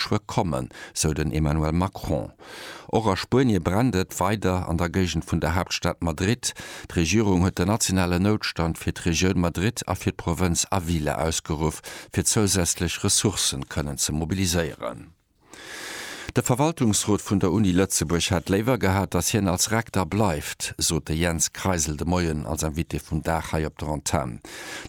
Schued kommen, sou den Emmanuel Macron. Och a Spuenie brennt et weider an der Géigend vun der Haaptstad Madrid. D'Regierung huet den nationalen Noutstand fir d'Regioun Madrid a fir d'Provënz Avila ausgeruff, fir zousätzlech Ressourcen kënnen ze mobiliséieren. De Verwaltungsrot vun der Uni Lëtzebuerg hätt léiwer gehat, datt hien als Rekter bleift, sot de Jens Kreisel de Moien als Invité vum Dag hei op der Antenn.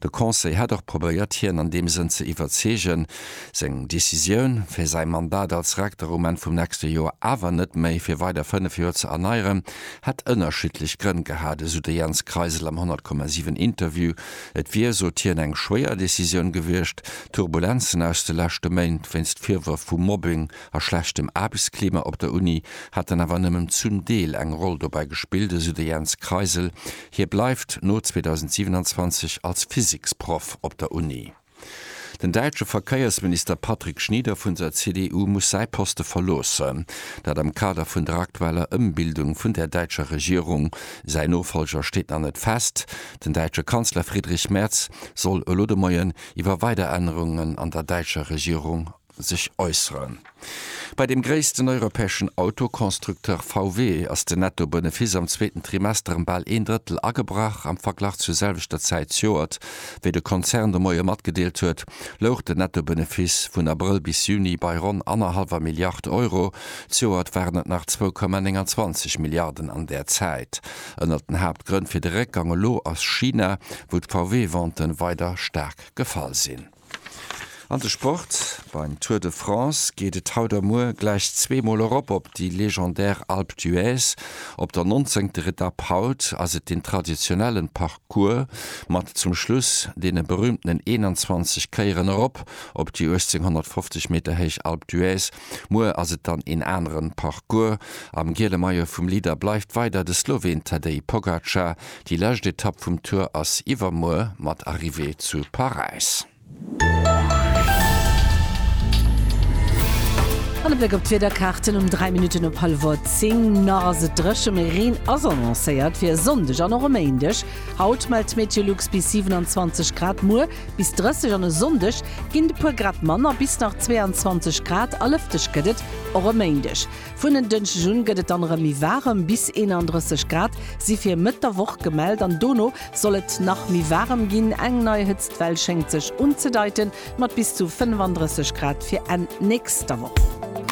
De Conseil hätt och probéiert hien an deem Sënn ze iwwerzeegen, seng Decisioun, fir säi Mandat als Rektor um Enn vum nächste Joer awer net méi fir weider fënnef Joer ze erneieren, hätt ënnerschiddlech Grënn gehat, esou de Jens Kreisel am 100,7 Interview. Et wier, sot hien, eng schwéier Decisioun gewiescht. D'Turbulenzen aus de leschte Méint wéinst Virwërf vu Mobbing a schlechtem Aarbechtsklima op der Uni hätten awer nëmmen zum Deel eng Roll dobäi gespillt, esou de Jens Kreisel. Hie bleift no 2027 als Physiksproff op der Uni. Den däitsche Verkéiersminister Patrick Schnieder vun der CDU muss säi Poste verloossen. Dat am Kader vun der aktueller Ëmbildung vun der däitscher Regierung. Säin Nofolger steet nach net fest. Den däitsche Kanzler Friedrich Merz soll elo de Moien iwwer weider Ännerungen an der däitscher Regierung sech äusseren. Bei dem gréissten europäeschen Autoconstructeur VW ass den Netto-Benefiss am zweeten Trimester ëm bal een Drëttel agebrach. Am Verglach zur selwechter Zäit zjoert, wéi de Konzern de Moie matgedeelt huet, louch den Netto-Benefiss vun Abrëll bis Juni bei ronn annerhallwer Milliard Euro. Zjoert waren et nach zwou Komma 29 Milliarden an där Zäit. Ënnert den Haaptgrënn fir de Réckgang elo ass China, wou d'VW-Venten weider staark gefall sinn. An de Sport, Beim Tour de France geet et haut a muer gläich zweemol erop op déi legendär Alpe d'Huez. Op der nonzéngter Etapp haut ass et den traditionellen Parcours mat zum Schluss deene berühmtenen 21 Kéieren erop op déi 1850 Meter héich Alpe d'Huez. Muer ass et dann een aneren Parcours. Am giele Maillot vum Leader bleift weider de Sloween Tadej Pogacar. Déi lescht Etapp vum Tour ass iwwermuer mat Arrivée zu Paräis. An e Bléck op d'Wiederkaarten um 3 Minutten op hallwer 10. Nach ass et dréche mee Reen ass annoncéiert fir e Sonndeg an och e Méindeg. Haut mellt Meteolux bis 27 Grad, muer Bis 30 an e Sonndeg ginn et e puer Grad manner, bis nach 22 Grad a lëfteg gëtt et och e Méindeg. Vun en Dënschdeg un gëtt et dann erëm méi waarem, bis 31 Grad si fir Mëtt der Woch gemellt an dono soll et nach méi waarem ginn. Eng nei Hëtztwell schéngt sech unzedeiten, mat bis zu 35 Grad fir Enn nächster Woch.